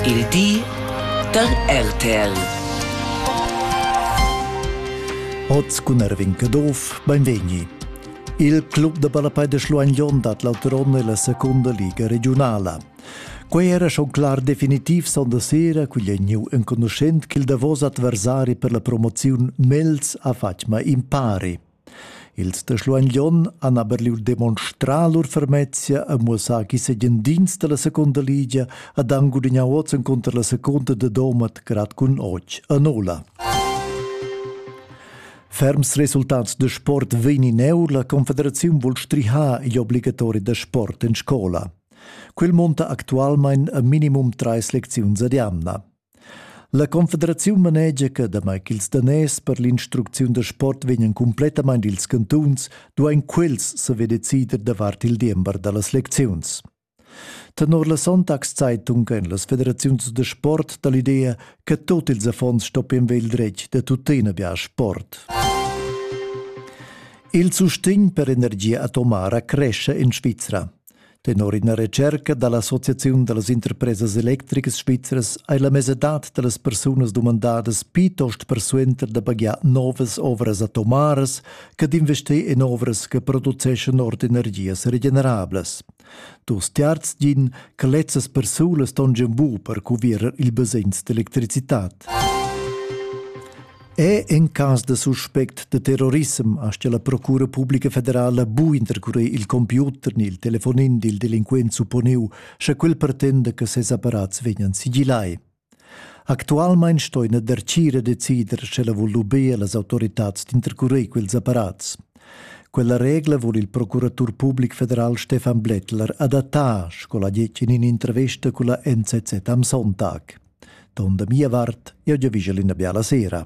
Il di da RTL. Oz cun Erwin Caduff, benvegni. Il club da ballapei de Schluein Jon dat l'auturon nella seconda liga regionala. Quei era schon clar definitiv sonda sera quigl è gniu enconuschent ch'il davos adversari per la promoziun Mels ha fatg ma impari. Els da Schluein Glion han aber lur demonstrà lur fermezia e muossà chi segendins dalla seconda ligia ad han gudignà oz encunter la seconda de Domat grad cun och a Nola. Ferms resultats de sport vegnineur la Confederaziun vul strihar gli obbligatori da sport in scola. Quel monta actualmein a minimum treis lecziuns ad jamna. La Confederaziun manegia che damai ch'ils daners per l'instrucziun da sport vegnan cumplettamain dils cantuns, duain quels saver decider davart il diember da las lecziuns. Tenor la Sonntagszeitung ein las federaziuns da sport dall'idea che tot ils affons stoppien vegl dretg da tuttina bia sport. Il sustegn per energia atomara cresce in Svizra. Tenor ina retscherca da l'Associaziun da las interpresas electricas svizras hai la mesadad da las persunas dumandadas plitost persuenter da pagiar novas ovras atomaras che d'investir en ovras che produceschan ord energias regenerablas. Dus terzs din che lezzas persunas ston giun bu per cuvierer il basegns d'electricitad. È en cas da suspect de terrorissem aschia la Procura Publica Federala bu intercurer il computer ni il telefonin dil delinquent supponiu, sche quel pretenda che ses apparats vegnan sigillai. Actualmein sto ina dercira decider sche la vul lubir las autoritads d'intercurer quels apparats. Quella regla vul il procuratur public federal Stefan Blättler adattar, sco la diecin in intervesta con la NZZ am Sonntag. Ton da mia vart, jeu giavischel ina biala sera.